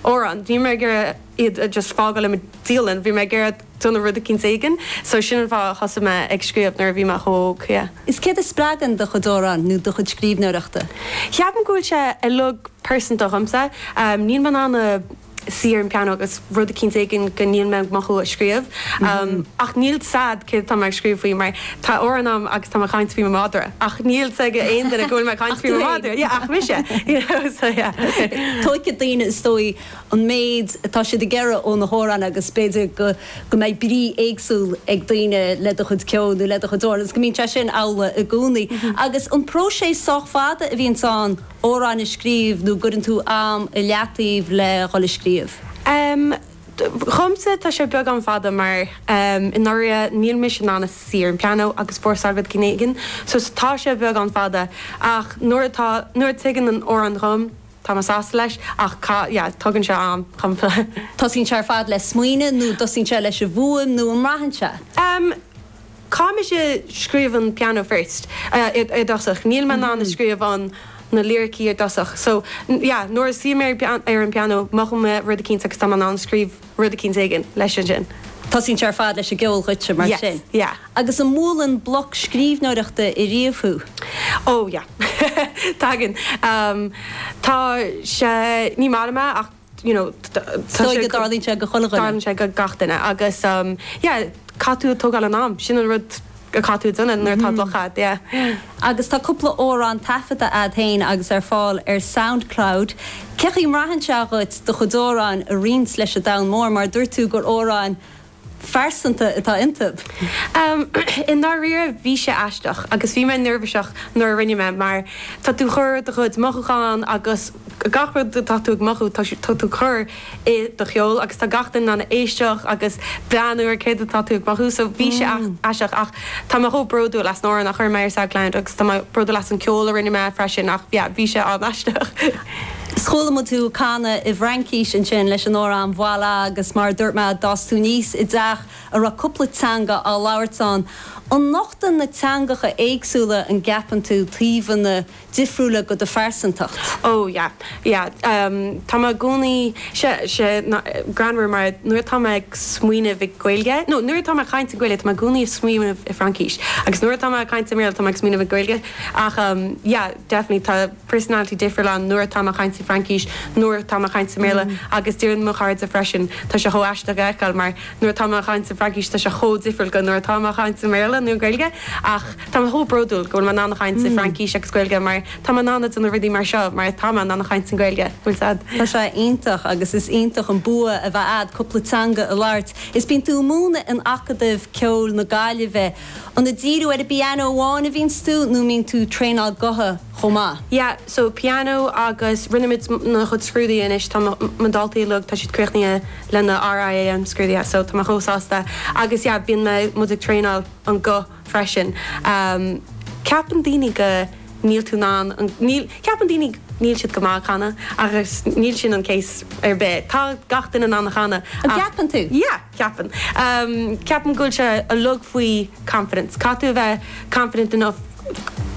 Árann. Bhí mé ag iarraidh iad a just fágáil i mo dialann. Bhí mé ag iarraidh déanamh rud eicínt éigin. So sin an fáth a thosaigh mé ag scríobh nuair a bhí mé chomh hóg, yeah. Is céard a spreagann do chuid amhrán nó do chuid scríbhneoireachta? Cheapaim go bhfuil sé uilig pearsanta dhomsa. Níl mé in ann suí ar an pianó agus rud eicínt éigin go níl mé ag mothú a scríobh. Ach níl 's a'd céard atá mé ag scríobh faoi mar Tá amhrán a'm agus tá mé ag caint faoi mo mhadra ach níl 's ag aon duine go bhfuil mé ag caint faoi mo mhadra, yeah, ach mise, you know, so yeah. Tógfaidh daoine, is dóigh, an méid atá siad ag iarraidh ó na hamhráin agus b'fhéidir go, go mbeidh brí éagsúil ag daoine le do chuid ceoil nó le do chuid amhrán agus go mbíonn sé sin amhlaidh i gcónaí. Agus an bpróiseas sách fada a bhíonns ann amhrán a scríobh nó gcuireann tú am i leataobh le dhul a scríobh? Em. Dhomsa tá sé beagán fada mar i ndáiríre níl mise in ann a suí ar an pianó agus fórsáil rud eicínt éigin so tá sé beagán fada ach nuair atá, nuair a tagann an amhrán chugam tá mé sásta leis ach cá, yeah tógann sé am, definitely. Dtosaíonn sé ar fad le smaoineamh nó dtosaíonn sé leis an bhfuaim nó an mbraitheann sé? Em. Caithfidh mise scríobh an piano first i dtosach, níl mé in ann scríobh na, na liricí i dtosach so yeah nuair a suí mé ar an piano mothaím mé rud eicínt agus táim in ann scríobh rud eicínt éigin leis ansin. Tosaíonn sé ar fad leis an gceol dhuitse mar sin? Yes, yeah. Agus an mbualann bloc scríbhneoireachta i riamh thú? Oh yeah tagann, tá sé ní maith liom é ach. you know, tá sé go. Dtarlaíonn sé go chuile dhuine. Dtarlaíonn sé go gach duine agus yeah, caithfidh tú a' tógáil an am, sin an rud a caithfidh tú a' déanamh nuair atá bloc a'd, yeah. Agus tá cúpla amhrán taifeadta a'd féin agus ar fáil ar Soundcloud. Cé chaoi mbraitheann sé dhuit do chuid amhráin a roinnt leis an domhan mór mar dúirt tú gur amhráin phearsanta atá iontu? I ndáiríre bhí sé aisteach agus bhí mé neirbhíseach nuair a rinne mé mar tá tú chur do chuid mothúchán agus gach rud atá tú ag mothú tá sé tá tú chur i do cheol agus tá gach duine in ann éisteacht agus breathnú ar céard atá tú ag mothú so bhí sé aisteach ach tá mé chomh bródúil as an amhrán a chuir mé ar Soundcloud agus tá mé bródúil as an ceol a rinne mé freisin ach yeah bhí sé an-aisteach. 'S chuala muid thú canadh i bhFraincís ansin leis an amhrán Voila agus mar a dúirt mé d'fhás tú aníos i dteach a raibh cúpla teanga á labhairt ann. An nochtann na teangacha éagsúla, an gceapann tú, taobhanna difriúla go do phearsantacht? Ó yeah, yeah. Tá mé i gcónaí, tá sé, tá sé greannmhar mar nuair atá mé ag smaoineamh i Gaeilge, no, nuair atá mé ag caint i Gaeilge tá mé i gcónaí ag smaoineamh i Fraincis agus nuair atá mé ag caint i mBéarla tá mé ag smaoineamh i Gaeilge ach yeah, definitely tá. personality difriúil ann, nuair atá mé ag caint sa Fraincis, nuair atá mé ag caint sa mBéarla, agus deireann mo chairde freisin, tá sé chomh aisteach a fheiceáil, mar nuair atá mé ag caint sa Fraincis, tá sé chomh difriúil go nuair atá mé ag caint sa mBéarla nó Gaeilge, ach tá mé chomh bródúil go bhfuil mé in ann caint sa Fraincis agus Gaeilge, mar tá mé in ann dona rudaí mar seo, mar tá mé in ann caint san Gaeilge, bhfuil fhios agat? Tá sé iontach, agus is iontach an bua a bheith agat cúpla teanga a labhairt. Is bíonn tú ag múineadh in Acadamh Ceoil na Gaillimhe. An ag díriú ar an bpianó amháin a bhíonns tú, nó mbíonn tú traenáil gutha? chomh maith. Yeah so piano agus rinne muid na chuid scrúduithe anois tá mo daltaí uilig tá siad críochnaithe le na R.I.A.M scrúduithe so tá mé chomh sásta agus yeah bíonn mé muid ag traenáil an guth freisin ehm ceapann daoine go níl tú in ann an níl ceapann daoine níl siad go maith ag canadh agus níl sin an case ar bith tá gach duine in ann a chanadh ach an gceapann tú? yeah. Ceapaim. Ceapaim go bhfuil sé uilig faoi confidence. Caithfidh tú a bheith confident enough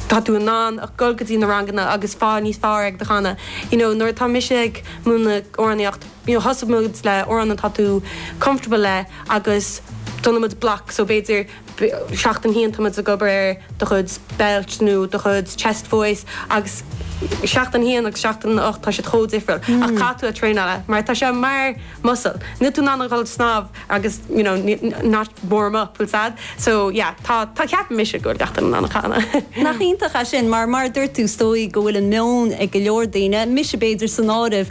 tá tú in ann a dhul go dtí na ranganna agus fáil níos fearr ag do chanadh. You know nuair atá mise ag múineadh amhránaíocht you know tosaíonn muid le amhrán atá tú comfortable le agus déanaimid block so b'fhéidir seachtain a haon táimid ag obair ar do chuid belt nó do chuid chest voice agus seachtain a haon agus seachtain a hocht tá siad chomh difriúil ach caithfidh tú a traenáil mar tá sé mar muscle níl tú in ann a dhul ag snámh agus you know not warm up full stop so yeah tá tá ceapaim mise go bhfuil gach duine in ann a chanadh. Nach iontach é sin mar mar a dúirt tú is dóigh go bhfuil an meon ag go leor daoine, mise b'fhéidir san áireamh,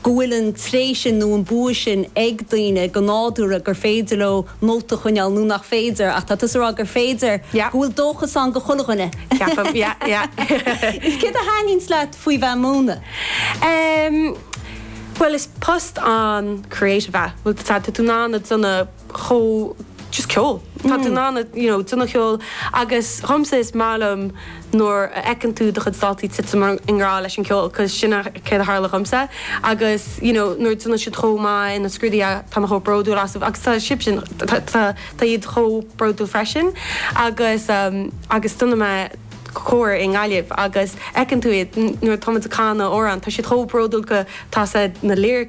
go bhfuil an tréith sin nó an bua sin ag daoine go nádúrtha gur féidir leo nóta a choinneáil nó nach féidir ach tá tusa ag rá gur féidir, go bhfuil dóchas ann do chuile dhuine. Ceapaim, yeah, yeah. Is céard a thaitníonns leat faoi bheith ag múineadh? Bhuel is post an-creative é. Bhuel tá tú in ann na. chomh just ceol. Tá tú in ann you know déanamh ceol agus dhomsa is maith liom nuair a fheiceann tú do chuid daltaí tite i ngrá leis an gceol cos sin é céard a tharla dhomsa agus you know nuair a déanann siad chomh maith ina scrúduithe tá mé chomh bródúil asaibh agus tá siadsan tá tá tá iad chomh bródúil freisin agus umm agus déanann mé cór i nGaillimh agus fheiceann tú iad nuair a táimid ag canadh amhrán tá siad chomh bródúil go tá siad na lyric